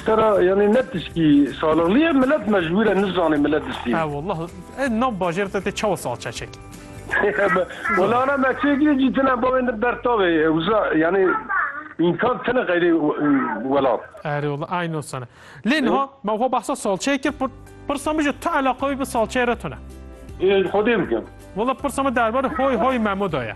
Sera yanî ne tiştî salixlî ye milet mecbûr e nizane milet distî. He wallah e nav bajêr te tê çawa salçe çekî. Wala ana me çêkî cî tine bavên de ber tavê wisa yanî înkan tine xeyrê welat. Erê wallah ay no sene. Lê niha me xwe behsa salçeyê kir pirsa min ji tu eleqa wî bi salçeyê re tune. Xwedê bikim. Wallah pirsa min derbarê hoy hoy Memo de ye.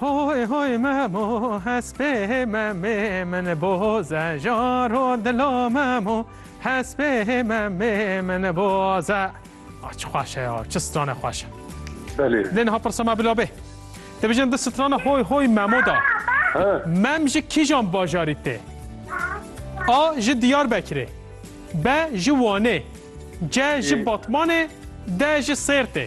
Hoy hoy memo hespê memê min boze jaro dilo memo hespê memê min boze. Ah çi xweş e ya çi strane xweş e. Belê. Lê niha pirsa me bila bê. Dibêjin di strana hoy hoy memo da. He. Mem ji kîjan bajarî tê? A ji Diyarbekirê. B ji Wanê. C ji Batmanê. D ji Sêrtê.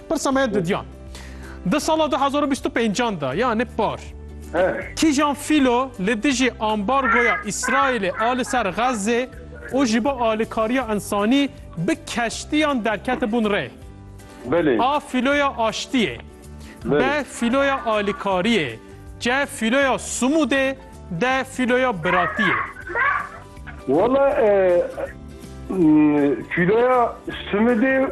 Pirsa me didyan. Di sala 2025 de yani par kîjan fîlo li dijî ambargoya Îsraîlê a li ser Xezzê û ji bo alikariya însanî bi keştiyan derketibûn rê. A fîloya aştiyê, B fîloya alikariyê, C fîloya Sumûdê, D fîloya biratiyê. Wala fîloya Sumûdê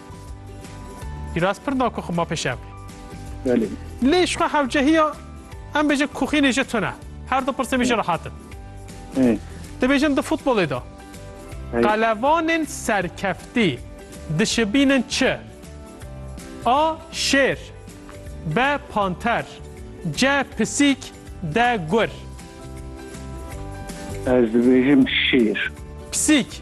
Biraz pir da ku xuma peşev. Belê. Lê ji xwe hewcehiya em bêjin kuxînê ji tune. Her du pirsê bêjin rahatin. Dibêjin di futbolê de qelevanên serkeftî dişibînin çi? A. Şêr B. Panter C. Pisîk D. Gur Ez dibêjim şêr. Pisîk